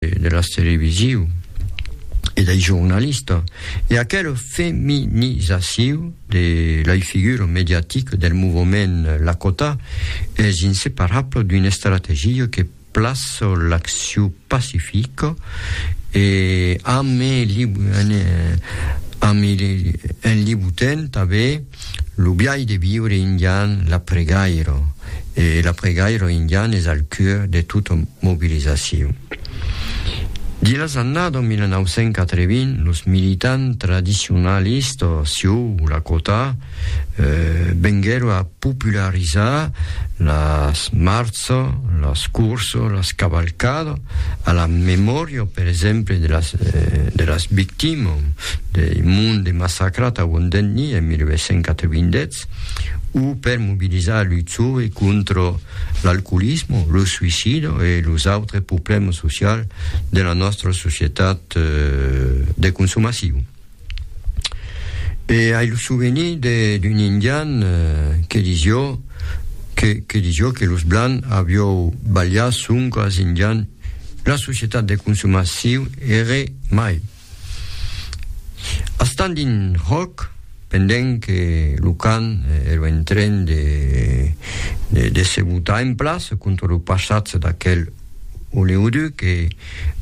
de las televisiu e dei jornalista e aquela feminizaciu de lei figura mediatica del movement Lakota es inseparabla d'una estrategia que plaça l'acciu pacifica e enlibutent tanben Lo biais de viure indian, la pregairo, e la pregairo indian es al cœur de tota mobilizacion. Dins las annada 1980, los militants tradicionalistas sieu Lakota venguèron a popularizar las marchas, las cursas, las cavalcadas, a la memòria, per exemple, de las victimas. dei monts de massacrat a Wondeni en 1890, o per mobilizar lu còve contra l'alcoolismo, lo suicido e los autres problèmas socials de la nòstra societat de consomacion. E ai lo souvenir d'un indian que disió que que disió que los blancs aviou balhat sonque als indians, la societat de consomacion ère mai. A Standing Rock, pendent que lo can ero en tren de, de, de se botar en plaç contra lo passatge d'aquel oleoduc e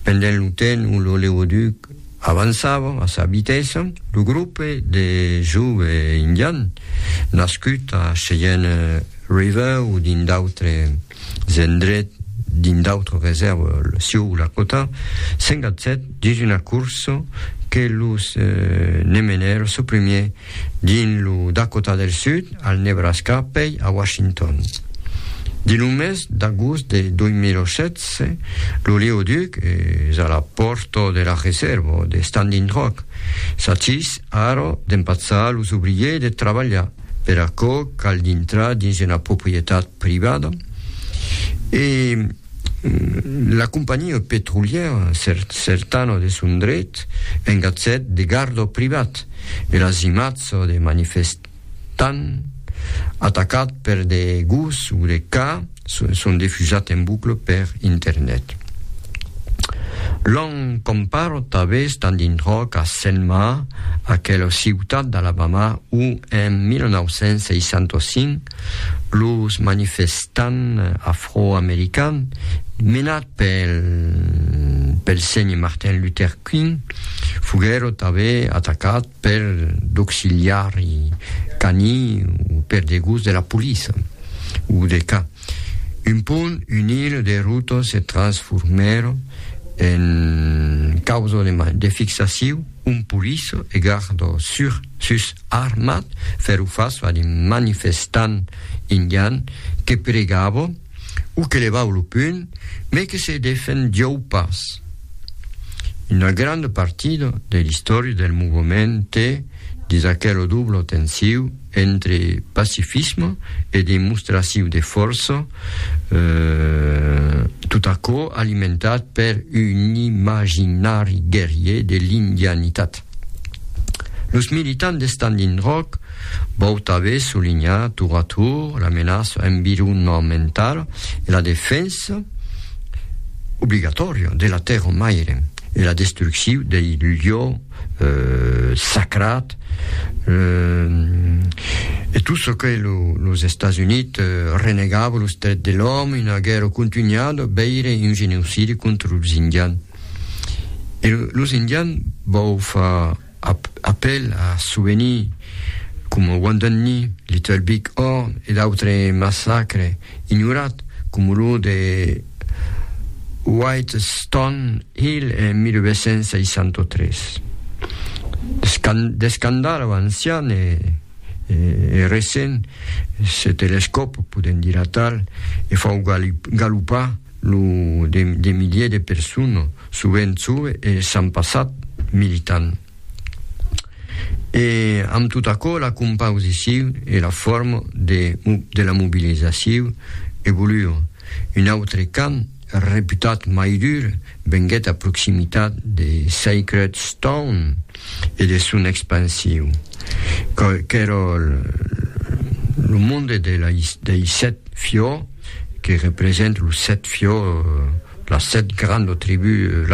pendent lo temps où l'oléoduc avançava a sa vitessa, lo grope de jove indian nascut a Cheyenne River o dins d'autres Zendret, dins d'autres resèrves sieu Lakota, 57 dins una corsa que los ne menèr su primier dins lo Dakota del Sud, al Nebraska pei a Washington. Dins lo mes d'agost de 2016, lo Leoduc es a la pòrta de la resèrva de Standing Rock. S'achís ara d'empatzar los obriers de trabalhar. Per aquò, cal dintrar dins una proprietat privada e la companhiá petrolièra Certano de son dret engatjèt de garda privat e las imatges de manifestants atacats per de gos o de cats son defusat en bucle per internet. L'an comparat tanben Standing Rock a Selma, aquela ciutat d'Alabama où en 1965 los manifestants afroamericans menats pel pel Sr. Martin Luther King foguèron tanben atacats per d'auxiliari cani o per de gos de la poliça o de ca. Un pont unir de rotas se transformèr en causa de man de fixaciu ont poliça e garda sur sus armat fèro fas a de manifestants indians que pregava o que levau lo punh, me que se defendiou pas. Una granda partida de l'istòria del movement te dis aquela dubla tensiu entre pacifisme e demostraciu de fòrça, tot aquò alimentat per un imaginari guerrier de l'indianitat. Los militants de Standing Rock vau tanben solinhar tour a tour la menaça environnementala e la defensa obligatòria de la tèrra maire e la destrucciu dei lieux sacrats e tot çò que los Estats Units renegava los drets de l'òme, una guèrra continuada, veire un genocidi contra los Indians. E los indians vau far apèl a souvenirs coma Wounded Knee, Little Big Horn e d'autre massacre ignorat coma lo de White Stone Hill en 1963. D'escandalh ancian e recent, se telescòp, podèm dire atal, e fau galopar Lo de miliers de personas, sovent jove e sans passat militant. E amb tot aquò la compausicion e la forma de, de la mobilizacion evoluon. Un autre camp, reputat mai dur, venguèt a proximitat de Sacred Stone e de son expansion, qu'èra lo monde de, de Isèt Fiò, que represente los sèt fiòs, las sèt grandes tribús,